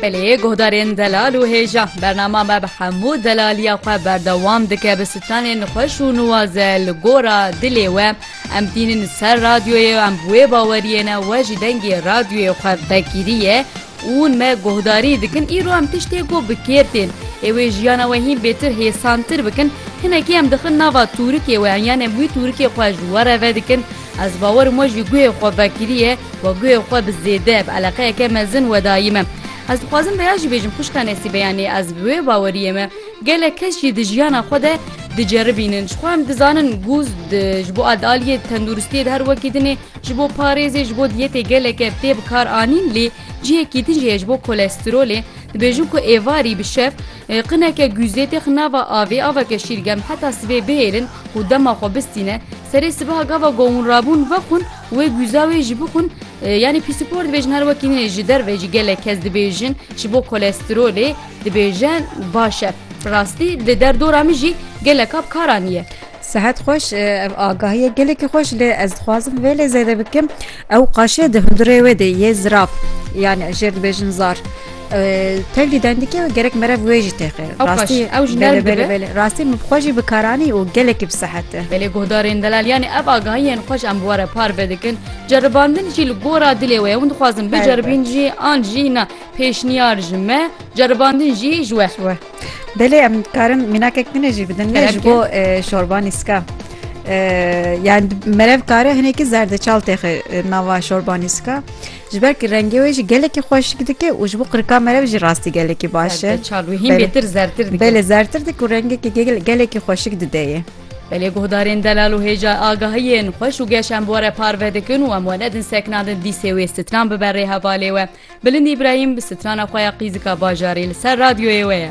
Peleyê guhdarên delal û hêja, bernama me bi hemû delaliya xwe berdewam dike bi sitanên xweş û nuwaze li gora dilê we. Em tînin ser radyoyê em bi wê baweriyê ne we jî dengê radyoyê xwe vekirî ye. Ûn me guhdarî dikin îro em tiştê ku bi kêr tên ê wê jiyana we hîn bêtir hêsantir bikin hinekî em dixin nava tûrikê we yanê wî tûrikê xwe ji we re vedikin Ez bawerim we jî guhê xwe vekiriye we guhê xwe bi zêde bi eleqeyeke mezin wedayî me. Ez dixwazim vêya jî bêjim xwişka Nesîbe yanî ez bi wê baweriyê me gelek kes jî di jiyana xwe de diceribînin jixwe em dizanin ku ji bo adaliyê tenduristiyê di her wekî dinê ji bo parêzê ji bo diyetê geleke tê bikaranîn lê cihekî din jî heye ji bo kolesterolê dibêjin ku êvarî bi şev Qineke guzê tê xwe nava avê, aveke şîrgem heta sibê bihêlin û dema xwe bistîne. Serê sibeha gava govûn rabûn vexwin wê guza wê jî bixwin. Yanî pîsîpor dibêjin her wekî nê ji derve jî gelek kes dibêjin ji bo kolesterolê dibêje baş e. Rastî di derdora min jî geleka bi kar anîye. Sehet xweş, ev agahiye gelekî xweş lê ez dixwazim vê lê zêde bikim. Ew qaşê di hundirê wê de yê ziraf yan jêr dibêjin zar. Tevlî dendikê wê gerek merev wê jî têxê. Rastî ew ji nerm dibe. Rastî min bi xwe jî bikaranî û gelekî bi sehet e. Belê guhdarên delal yanî ev agahiyên xweş em bi we re parve dikin. Ceribandin jî li gora dilê wê ye. Hûn dixwazin biceribîn jî an jî na pêşniyar ji me, ceribandin jî ji we. Belê em dikarin mînakek din jî bidin ne ji bo şorba nîska. Yani merev kare hinekî zerdeçal têxe nava şorba nîska. Ji ber ki rengê wê jî gelekî xweşik dike û ji bo qirika merev jî rastî gelekî baş e. Çal wî hîn bêtir zertir dike. Belê zertir dik û rengekî gelekî xweşik dide yê. Belê guhdarên delal û hêja agahiyên xweş û geş em were parve dikin û em we nedin seknandin dîsê wê stran bibe rê hevalê we. Bilind Îbrahîm bi strana xwe ya Qîzika Bajarî li ser radyoyê we ye.